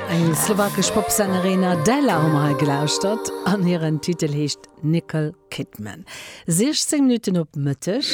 Eng slowakesch Popsängerin Adela hu mer hei gelauschtert an hiren Titel heescht Nickel Kidman. 16 Minutten op Mëtteg.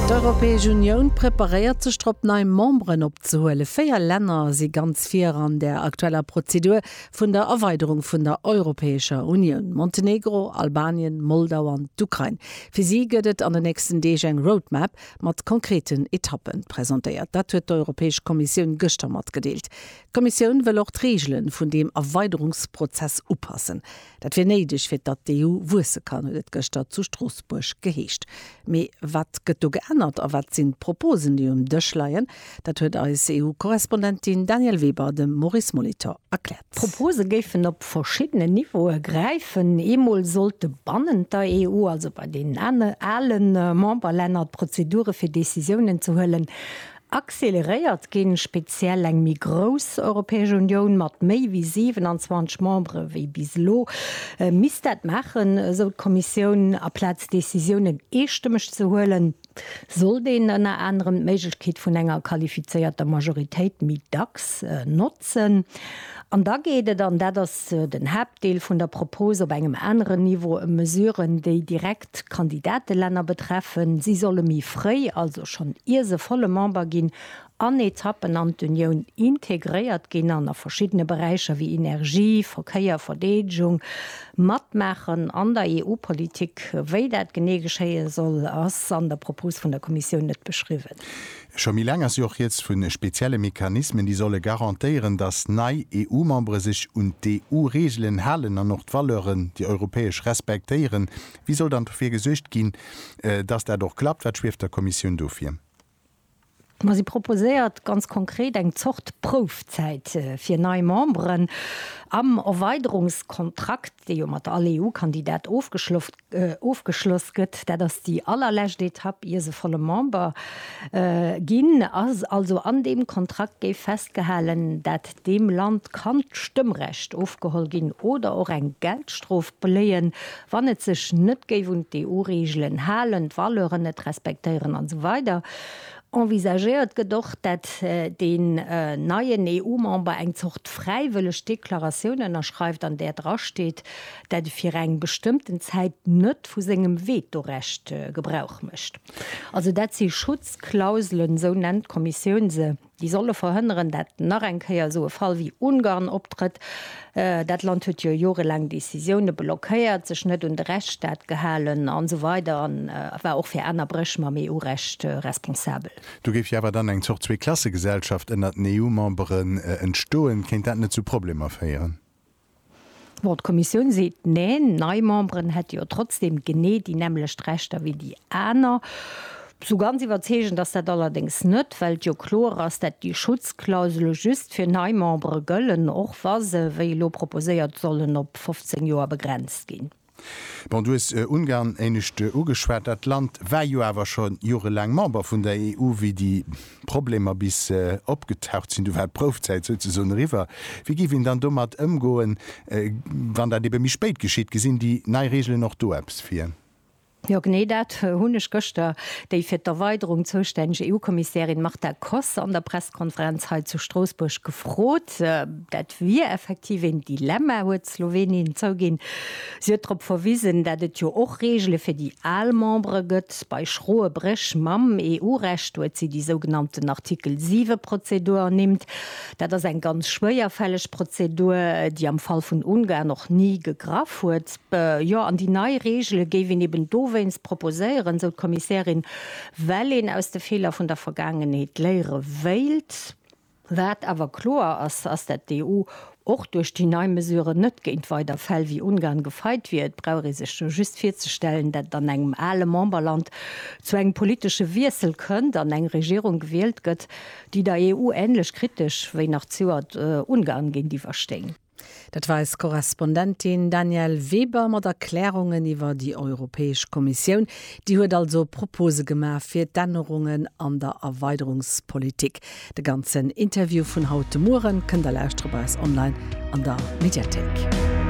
D'Europäesch Unioun preparéiert sech drop nei Memberen opzehuelen. Véier Länner si ganz vir an der aktueller Prozedur vun der Erweiderung vun der Europäescher Unioun, Montenegro, Albanien, Moldau an d'Ukrain. Fir si gëtt et an den nächsten Deeg eng Roadmap, mat konkreten Etappen presentéiert. Dat huet d'Europäesch Kommissioun gëschter matgedeelt. D'Kommissioun wëll och d'Reegelen vun deem Erweiderungsprozess upassen. Dat wier néideg fir datt d'EU wuesse kann, huet et gëschter zu Stroossbuerg geheescht. Mee wat gëtt do geännert a wat sinn d'Proposen, déi um Dësch leien? Dat huet eis EU-Korrespondentin Danièle Weber dem Maurice Molitor erkläert. D'Propose géifen op verschiddenen Niveaue gräifen. Eemol sollte bannent der EU, also bei deenen ale Memberlänner, d'Prozedure fir Decisiounen ze huelen acceleréiert ginn, speziell eng méi grouss Europäesch Unioun mat méi wéi 27 Membere wéi bis elo misst dat maachen, esou d'Kommissioun, aplaz Decisiounen eestëmmeg ze huelen. Sollt een ënner anerem d'Méiglechkeet vun enger qualifizéierter Majoritéit méi dacks notzen. An da geet et, an dat ass den Haaptdeel vun der Propos, op engem aneren Niveau ëm Mesuren, déi direkt Kandidatelänner betreffen. Si solle méi fréi, also schonn ier se volle Member ginn, an Etappen an d'Unioun integréiert ginn an a verschiddene Beräicher wéi Energie, Verkéier, Verdeedegung matmaachen an der EU-Politik. Wéi dat genee geschéie soll, ass an der Propos vun der Kommissioun net beschriwwen. Scho méi laang ass jo och rieds vu spezielle Mechanismen, déi solle garantéieren, datt nei EU-Membere sech un d'EU-Reegelen halen an och d'Valeuren, déi europäesch, respektéieren. Wéi soll dann dofir gesuergt ginn, datt dat och klappt? Wat schwieft der Kommissioun do vir? Ma si proposéiert ganz konkret eng Zort Proufzäit fir nei Memberen. Am Erweiderungskontrakt, dee jo mat all EU-Kandidat ofgeschloss gëtt, dat ass déi allerlescht Etapp ier se volle Member ginn, ass also an deem Kontrakt géif festgehalen, dat Deem Land kann d'Stëmmrecht ofgeholl ginn oder och eng Geldstrof bléien, wann et sech net géif un d'EU-Reegelen halen, d'Valeuren net respektéieren an esou weider Envisagéiert gëtt och, dat deen neien EU-Member eng Zort fräiwëlleg Deklaratioun ënnerschreift, an där drasteet, dat e fir eng bestëmmten Zäit net vu sengem Vetorecht Gebrauch mécht. Also dat si Schutzklauselen, esou nennt d'Kommissioun se. déi solle verhënneren, dat nach eng Kéier esou e Fall wéi Ungarn optrëtt, dat Land huet jo jorelaang Décisioune blockéiert, sech net un de Rechtsstaat gehalen an esou weider an war och fir aner Bréch mam EU-Recht responsabel. Do géif jo awer dann eng Zort Zwee-Klasse-Gesellschaft ënnert den EU-Memberen entstoen. Kéint dat net zu Problemer féieren? Bon, d'Kommissioun seet Neen, nei Memberen hätte jo trotzdeem genee déi nämmlecht Rechter wéi déi aner. Sou ganz iwwerzeegend ass dat allerdéngs net, well et jo kloer ass, dat déi Schutzklausele just fir nei Membere gëllen, och wa se, wéi elo proposéiert, sollen op 15 Joer begrenzt ginn. Bon, du hues Ungarn éinescht ugeschwat. Dat Land war jo awer scho jorelaang Member vun der EU, wéi déi Problemer bis opgetaucht sinn. Do war d'Proufzäit souzesoen eriwwer. Wéi géif een dann domat ëmgoen, wann dat ebe méi spéit geschitt? Gesinn déi nei Reegelen och do eppes vir? Jo, genee dat hunn ech gëschter déi fir d'Erweiderung zoustänneg EU-Kommissärin Marta Koss an der Pressekonferenz hei zu Stroossbuerg gefrot. Dat wier effektiv een Dilemma, huet Slowenien zouginn. Si huet drop verwisen, dat et jo och Reegele fir déi al Membere gëtt. Bei schroe Bréch mam EU-Recht huet si déi sougenannten Artikel 7 Prozedur ernimmt. Dat ass eng ganz schwéierfälleg Prozedur, déi am Fall vun Ungarn och ni gegraff huet. Jo, an déi nei Reegele géif een eben dowéinst proposéieren, esou d'Kommissärin, well een aus de Feeler vun der Vergaangenheet léiere wéilt. Wat awer kloer ass, ass dat d'EU och duerch déi nei Mesuren net géint weider Fäll wéi Ungarn gefeit wier. Et brauch ee sech jo just virzestellen, dat an engem ale Memberland zu engem politesche Wiessel kënnt an eng Regierung gewielt gëtt, déi der EU änlech kritesch wéi nach d'Seuert Ungarn géintiwwer stéing. Dat weist d'Korrespondentin Danièle Weber mat Erklärungen iwwer déi Europäesch Kommissioun. Déi huet also Propose gemaach fir d'Ännerungen an der Erweiderungspolitik. De ganzen Interview vun haut de Mueren kënnt der lauschteren bei eis online an der Mediathéik.